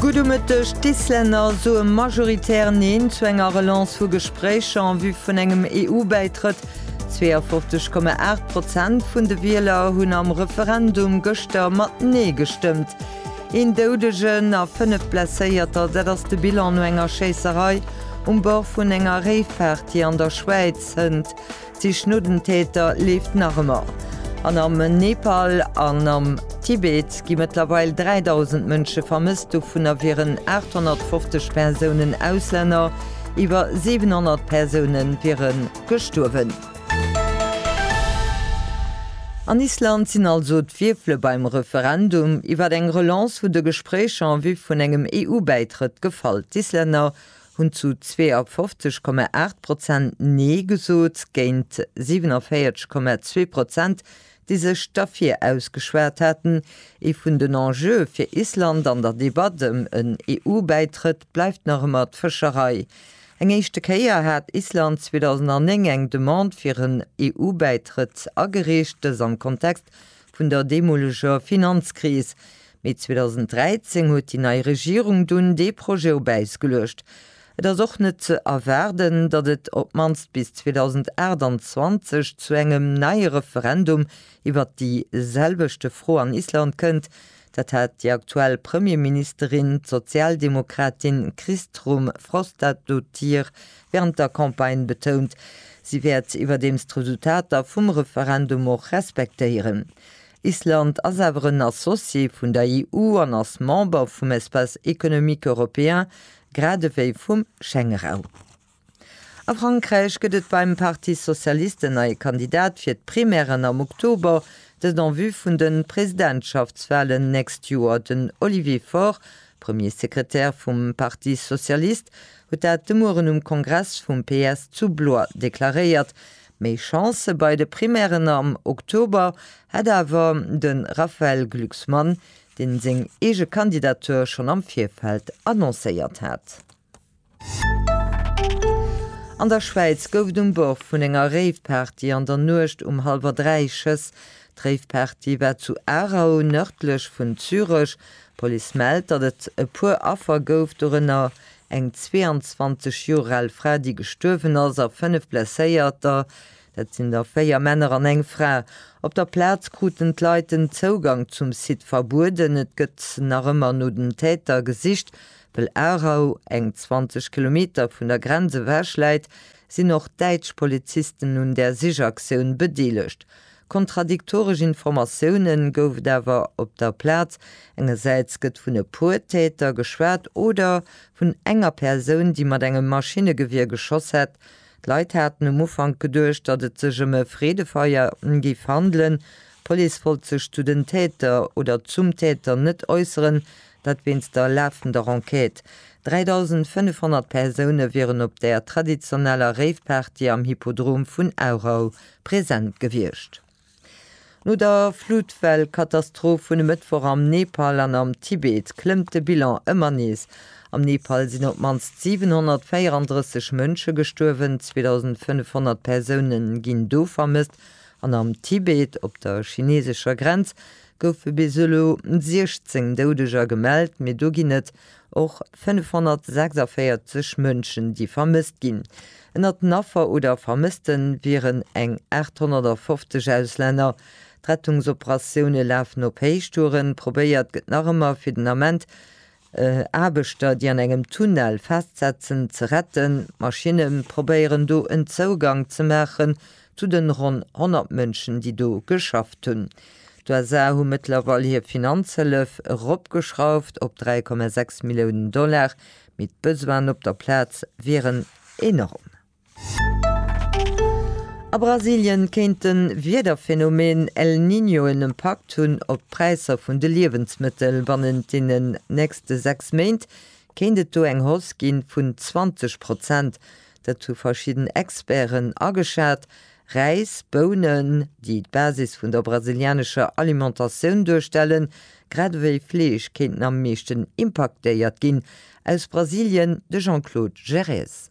Gutt um Mëtteg, D'Islänner soe majoritär Neen zu enger Relance vu Gespréicher en vue vun engem EU-Bäitrëtt. 52,8 Prozent vun de Wieler hunn am Referendum gëschter mat Nee gestëmmt. Een Doudegen a fënnef Blesséierter, dat ass de Bilan no enger Schéisserei um Bord vun enger Réiffahrt, déi an der Schwäiz hënt. D'Sich no den Täter leeft nach ëmmer. An am Nepal an am Tibet gi mëttlerweil 3.000 Mënsche vermësst, dovunner wieren 850 Persounen Auslänner, iwwer 700 Persoune wiere gestuerwen. An Island sinn also d'Wierfele beim Referendum iwwer eng Relance vun de Gespréicher en vue vun engem EU-Bäitrëtt gefall. D'Islänner hunn zu 52,8 Prozent Nee gesot, géint 47,2 Prozent, déi sech derfir ausgeschwat haten. Ee vun den Enjeue fir Island an der Debatt ëm en EU-Bäitrëtt bleift nach ëmmer d'Fëscherei. Eng éischte Kéier hat Island 2009 eng Demande fir en EU-Bäitrëtt agereecht, dës am Kontext vun der deemoleger Finanzkris. Mee 2013 huet déi nei Regierung dunn dee Projet op Äis geluecht. Et ass och net ze erwaarden, datt et op d'mannst bis 2028 zu engem neie Referendum iwwert déi selwechte Fro an Island kënnt. Dat hat déi aktuell Premierministerin, d'Sozialdemokratin Kristrún Frostadóttir, während der Campagne betount, si wäert iwwerdeems d'Resultater vum Referendum och respektéieren. Island ass awer en Associé vun der EU an ass Member vum Espace économique européen, grad ewéi vum Schengeraum. A Frankräich gëtt et beim Parti socialiste en neie Kandidat fir d'Primären am Oktober, dëst en vue vun de Presidentschaftswalen d'nächst Joer. Den Olivier Faure D'Premiersekretär vum Parti socialiste huet dat de Mueren um Kongress vum PS zu Blois deklaréiert. Méi Chancë bei de Primären am Oktober hätt awer de Raphaël Glucksmann, dee seng eege Kandidatur schonn am Virfeld annoncéiert hat. An der Schwäiz gouf et um Bord vun enger Rave-Party an der Nuecht um hallwer 3 Schëss. D'Rave-Party war zu Aarau, nërdlech vun Zürech. D'Police mellt, datt et e puer Affer gouf, dorënner eng 22 Joer al Fra, déi gestuerwen ass, a fënnef Blesséierter, dat sinn der véier Männer an eng Fra. Op der Plaz kruten d'Leit den Zougang zum Site verbueden. Et gëtt nach ëmmer no den Täter gesicht. Well Aarau eng 20 Kilometer vun der Grenz ewech läit, sinn och däitsch Polizisten un där Sichaktioun bedeelegt. Kontradiktoresch Informatioune gouf et awer op der Plaz, Engersäits gëtt vun e puer Täter geschwat oder vun enger Persoun, déi mat engem Maschinnegewier geschoss hätt. D'Leit haten um Ufank geduecht, datt et sech ëm e Freedefeier géif handelen. D'Police wollt sech zu den Täter oder zum Täter net äusseren. Dat wéinst der lafender Enquête. 3.500 Persoune wieren op der traditioneller Rave-Party am Hippodrom vun Aarau present gewiescht. No der Flutwell-Katastroph vun e Mëttwoch am Nepal an am Tibet klëmmt de Bilan ëmmer nees. Am Nepal sinn op d'mannst 734 Mënsche gestuerwen, 2.500 Persoune ginn do vermësst an am Tibet, op der chineesescher Grenz, goufe bis elo 16 Doudeger gemellt, mee do ginn et och 546 Mënschen, déi vermësst ginn. Ënnert den Affer oder Vermësste wieren eng 850 Auslänner. D'Rettungsoperatioune lafen op Héichtouren. Probéiert gëtt nach ëmmer fir den Ament Aarbechter, déi an engem Tunnel festsetzen, ze retten. D'Maschinne probéieren do en Zougang ze maachen zu de ronn 100 Mënschen, déi do geschafft hunn. D'USA hu mëttlerweil hir Finanzhëllef eropgeschrauft op 3,6 Milliounen Dollar, mee d'Besoinen op der Plaz wieren enorm. A Brasilien kéint de Wiederphenomen El Niño en Impakt hunn op d'Präisser vun de Liewensmëttel. Bannent deenen nächste 6 Méint kéint et do eng Hausse gi vun 20 Prozent. Dat hu verschidden Experten ageschat. Räis, Bounen, déi d'Basis vun der brasilianescher Alimentatioun duerstellen, grad ewéi Fleesch kéinten am meeschten impaktéiert ginn. Aus Brasilien de Jean-Claude Gérés.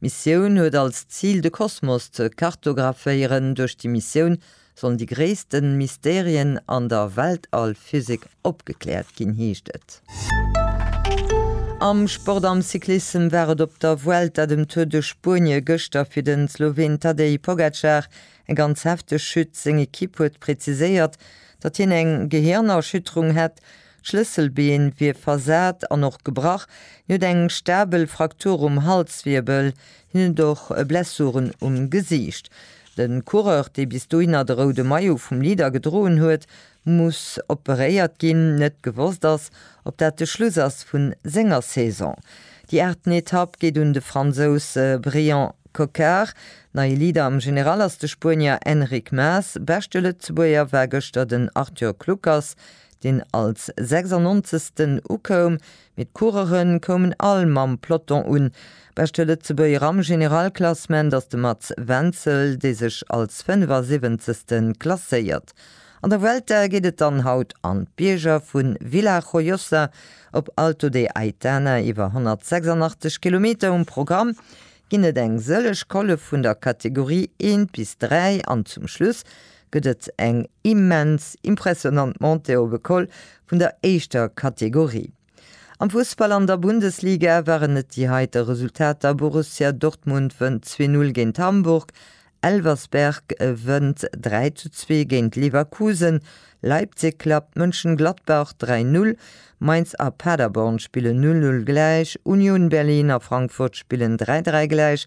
D'Missioun huet als Zil de Kosmos ze kartographéieren. Duerch déi Missioun sollen déi gréisste Mysterien an der Weltall-Physik opgekläert ginn, heescht et. Am Sport, am Cyclissem war et op der Vuelta, dem Tour de Spuenie, gëschter fir de Sloween Tadej Pogacar eng ganz hefteg Chute. Seng Ekipp huet präziséiert, datt hien eng Gehirnerschütterung hätt. D'Schlësselbeen wier versat an och gebrach. Hien huet eng stabel Fraktur um Halswirbel. Hien huet och Blessuren um Gesiicht. De Coureur, dee bis dohinner de roude Maillot vum Leader gedroen huet, muss operéiert ginn. Net gewosst ass, ob dat de Schluss ass vu senger Saison. Déi aachten Etapp geet un de Fransous Brian Cocard. Neie Leader am General ass de Spuenier Enric Mas. Beschte Lëtzebuerger war gëschter den Arthur Kluckers. deen als 96. ukoum, mee d'Courere koumen all mam Peloton un. Beschte Lëtzebuerger am Generalklassement ass de Mats Wenzel, dee sech als 75. klasséiert. An der Vuelta geet et dann haut an d'Bierger vu Villajojosa op Alto de Aitana. Iwwer 186 Kilometer um Programm, ginn et eng sëllech Colle vun der Kategorie 1 bis 3 an zum Schluss gëtt et eng immens impressionant Montée op e Col vun der éischter Kategorie. Am Fussball an der Bundesliga waren et déi heite Resultater, Borussia Dortmund wënnt zwee Null géint Hamburg, Elversberg wënnt dräi zu zwee géint Leverkusen, Leipzig klappt Mönchengladbach dräi Null, Mainz a Paderborn spillen Null Null gläich, Union Berlin a Frankfurt spillen dräi dräi gläich,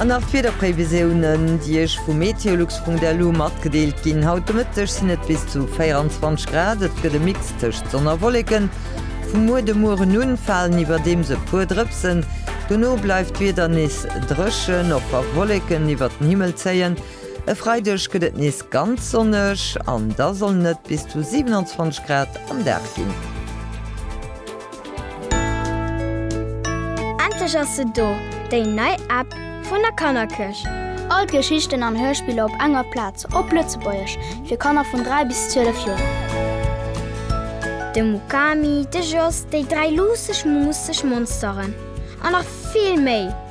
An nach d'Wiederprévisiounen, déi Iech vu meteolux.lu matgedeelt ginn. Haut de Mëtteg sinn et bis zu 24 Grad, et gëtt e Mix tëscht Sonn a Wolleken. Vum Muer de Mueren un falen iwwerdeems e puer Drëpsen, dono bleift d'Wieder nees dréchen, och wa Wolleken iwwert den Himmel zéien. E Freideg gëtt et nees ganz sonneg an da sollen et bis zu 27 Grad am Dag ginn. Endlech ass se do, déi nei App vun der Kannerkëch! All d'Geschichten an Hörspiller op enger Plaz, op Lëtzebuergesch, fir Kanner vun 3 bis 12 Joer. De Mukami, de Jos, déi dräi luusseg, muusseg Monsteren an nach vill méi!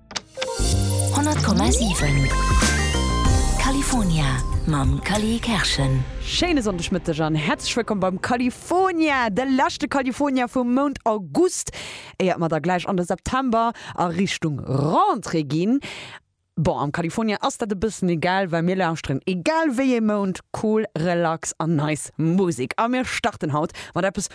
100,7 California mam Cally Kerschen. Schéine Sonndegmëtteg an häerzlech wëllkomm beim California, de leschte California vum Mount August, éiert mer da gläich an de September a Richtung Rentrée ginn. Bon, am California ass dat e bëssen egal, well mir lauschteren egal wéi ee Mount cool, relax an nice Musek. A mir starten haut mat eppes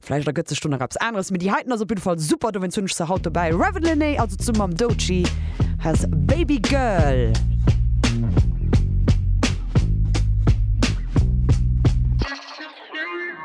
Vläicht ergëtt sech do nach eppes aneres, mee déi heiten ass op jidde Fall super, dowéinst hunn ech se haut dobäi. Ravyn Lenae also zum mam Doechii has Baby Girl.